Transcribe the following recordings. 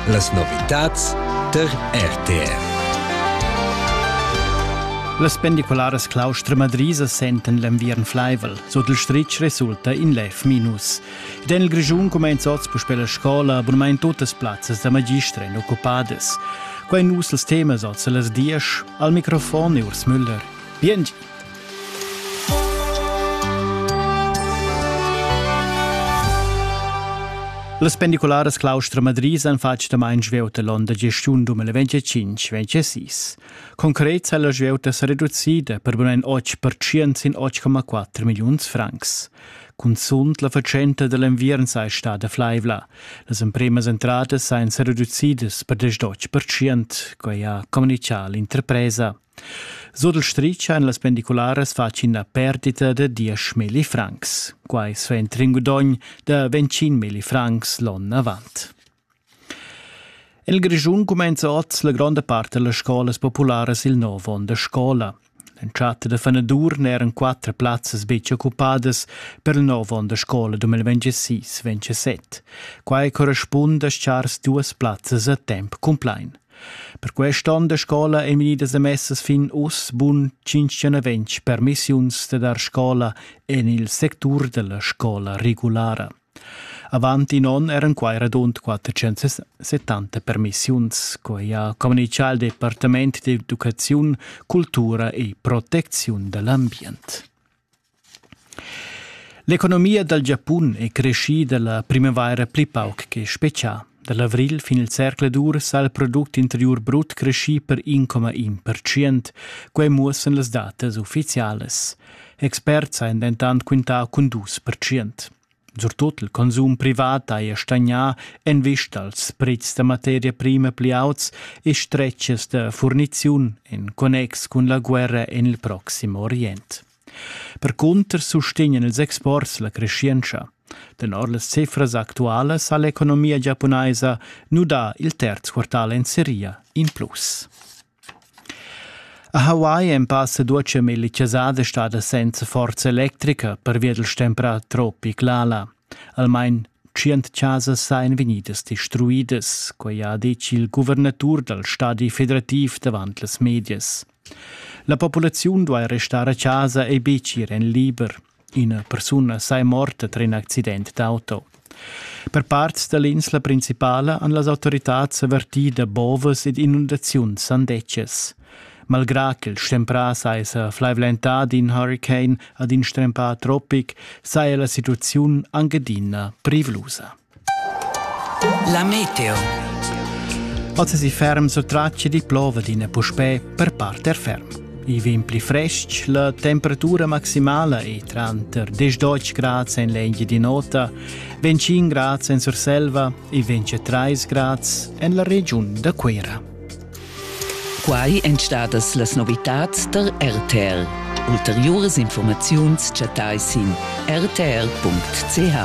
Las novitads tar RTF. Las pendicularas claustra-madrisa sentan l'enviern flaivel. Sut il stritg resulta in lev minus. Ed en il Grischun cumenza oz puspè la scola, abunamain tuttas plazzas da magistra èn occupadas. Quai nus els temas oz a las dies. Al microfon è Urs Müller. Bien Las pendicularas Claustra Madrid han fatg damain svieuta l'onn da gestiun 2025 26. Concret ha la svieuta sa reducida per bun en 8% sin 8,4 milliuns francs. Cunzunt la fatschenta da l'enviern sei stada flaivla. Las empremas entradas sajan sa reducidas per 18%, quai ha communichà l'interpresa. Sur il stritg ein las pendicularas fatg ina perdita da diesch milli francs. Quai suenter in gudogn da ventschin milli francs l'onn avant. Il Grischun cumenza oz la gronda part delle scolas populares il nov onn de scola. L'entschatta de fenadur n'eran quattro plazzas betg occupadas per il nov onn de scola 2026-27. Quai correspund a schars duas plazzas a temp cumplain. Per quest onn da scola ein vegnidas emessas fin uss bun tschintg permissiuns da dar scola en il sectur dalla scola regulara. Avant in onn eran quai radund 470 permissiuns, quai ha communichà il Departament d'educaziun, cultura e protecziun da l'ambient. L'economia dal Giapun è creschida la primavaira pli pauc che spezià. Da l'avrigl fin il zercl d'urs ha il product interiur brut creschì per 1,1 percent. Quai muossan las datas uffizialas. Experts han dentant quintà cun 2 percent. Surtut il consum privat haja stagnà en vista als prets da materia prima pli auts e stretgas da furniziun en connex cun la guerra en il proxim Orient. Percunter sustegnan ils exports la creschientscha. Tenor las cifras actualas ha l'economia giapunaisa nudà il terz quartal en seria in plus. A Hawaii en passa duce milli chasada stada senza forza electrica pervia del stempra tropic Lala. Almain 100 chasas seien vegnidas distruidas, quei ha detg il guvernatur dal stadi federativ davant las medias. La populaziun duai restar a chasa e betg ir en liber. Ina persuna sai morta tar in accident d'auto. Per parts da l'insla principala han las autoritads avertì da bovas ed inundaziuns sandetschas. Malgrà ch'il stemprà saja flaivlentà d'in huricane ad in strempà tropic, saja la situaziun anc adina privlusa. La meteo. Oz si ferm sur tracce di plova d'ina puspè per parte ferm. I vin pli frestg, la temperatura maximala è tranter 10 grad en l'engi di nota, 25 grad en Surselva e 23 grad en la regiun da Cuera. Quai èn stadas las novitads tar RTR. Ulteriuras informaziuns chattai sin rtr.ch.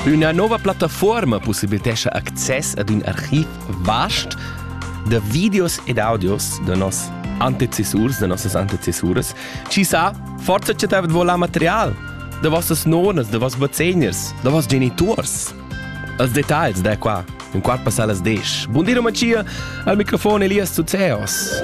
Üna nova plattafuorma possibilitescha access ad ün archiv vast da videos ed audios da nos antecessurs, da nossas antecessuras. Chi sa, forsa chattavet vo la material da vossas nonas, da voss vezegners, da voss geniturs. Els detagls da qua, in quart passà las 10. Bun di, Mattia, al microfon Elias Zuzeos.